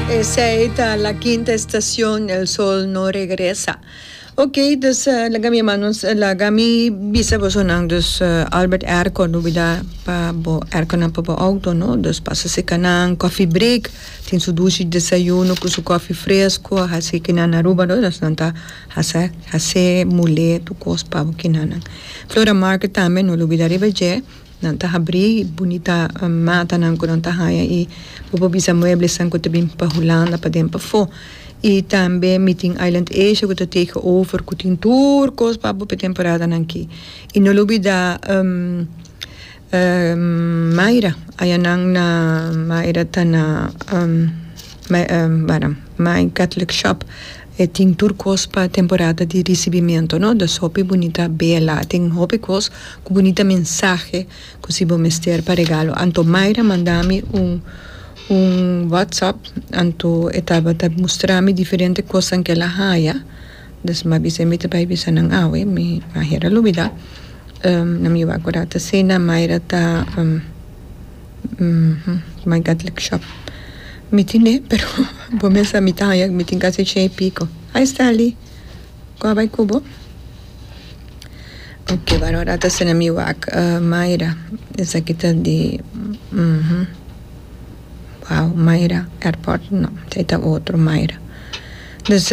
Esey ta la kinta estacion el sol no regresa ok dus laga mi hermano laga mi bisa boso nan dus Albert airco no bida pa bo airco nan pa bo auto no dus pasa seka nan coffee break tin su dushi desayuno cu su coffee fresco a hasi kinan na Aruba no dus nan ta hasa hase mule tur cos pa bo kinan nan Flora market tambe no lo bida riba dje. Nan ta habrí bunita matanan ku nan ta haña i bo por bisa mueblesan ku ta bin pa Hulanda pa den pafó. I tambe mi tin Island Asia ku ta tege over ku tin tur kos pa bo pa e temporadanan akí. I no lo bida Mayra, ayanan na Mayra ta na May Catholic Shop. E tin tur kos pa temporada di risibimento no da sopi bunita bela tin hopi kos ku bunita mensahe ku si bo mester pa regalo anto Mayra manda mi un un WhatsApp anto e tabata mustra mi diferente kosan ke la haya des mi a bisa mi ta bai bisa nan awe mi aher a lubida nan mi a kura ta asina Mayra ta. my god lek shop mi tin e pero bo mes a mi ta haña mi tin kasi ciento y pico ay Stanley cu a bay cu bo ok Barbara a ta sende mi wak Mayra esaki ta di wao Mayra airport no esaki ta otro Mayra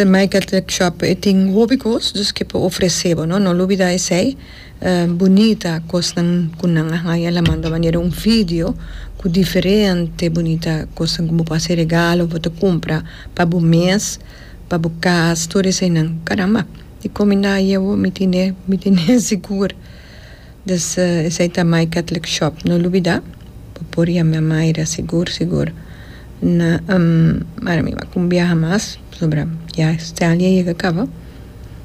my god lek shop e tin hopi cos dus ke por ofrece bo no lo olbida esey Bunita kosnan ku nan a haña el a manda manera un video ku diferente bunita kosnan ku bo por hasi regalo bo ta kumpra pa bo mes pa bo kas tur eseinan karamba dikon mi na yia bo mi tine mi tine sigur des esei ta my catholic shop no lubida bo por yama mayra sigur sigur na mara mi a kumbiaha mas pasobra ya este aña ya yega kaba.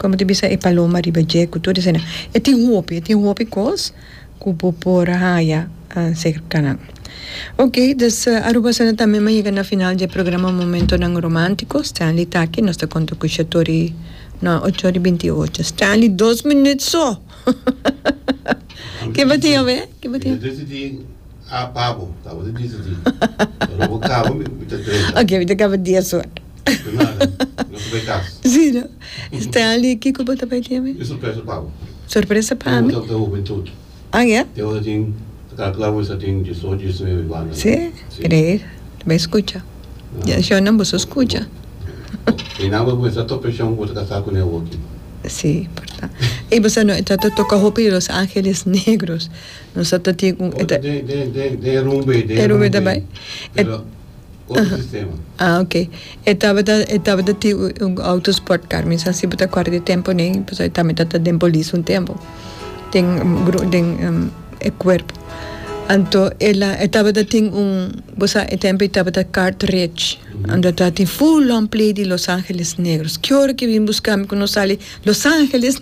como te bisa e paloma riba dje cu tur esana e tin hopi e tin hopi cos cu bo por haya cerca nan ok dus Aruba esana tambe mi a yega na final dje programa Momentonan Romantico Stanley ta aki nos ta conta cu Shatori no ocho ora y binti ocho Stanley dos minut so ki bo tin awe ki bo tin ok mi ta caba dies ora. Sí no. Stanley, kiko bo ta bai tin ami? Sorpresa pa mi? Ah ya? Sí, creer. Ta bai scucha. Shonnan boso scucha. Sí, porta. Ey, bo sa no, e ta ta toca hopi di Los Angeles Negros. Nos sa ta tin un. E rumbe ta bai. otro sistema. Ah, ok. E tabata, e tabata tin un, un auto sport car, mi sa si bo ta cuarda di e tempo ne, pasobra e tambe ta, ta den polis un tempo, den gru, den e cuerpo. Anto el a, e tabata tin un, bo sa e tempo ei tabata cartridge, anda ta tin full long play di Los Angeles Negros. Kior ki bin buscami cu no sali Los Angeles.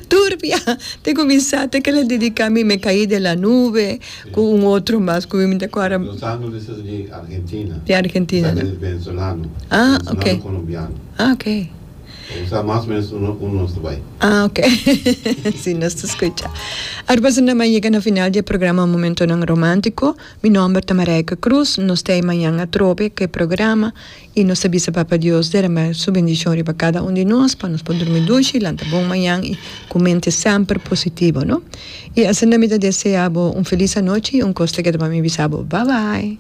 Turbia te cuminsa te kere dedica mi me caí de la nube cu un otro mas cu mi ta cuadra. Los anno mi sa di Argentina. Di Argentina. Mi sa di Venezolano. Ah ok. Venezolano Colombiano. Ah ok. Bo sa mas menos uno uno nos ta bai. Ah ok si nos ta scucha. Aru basa nan a yega na final di e programa Momentonan Romantico. Mi nomber ta Marijke Croes. Nos ta ey mañan atrobe cu e programa. I nos ta bisa Papa Dios derama Su bendishon riba kada un di nos pa nos por durmi dushi, lanta bon mañan i ku mente semper positivo, no? I asina mi ta deseá bo un felis anochi i un kos ta keda pa mi bisa bo, Bye bye!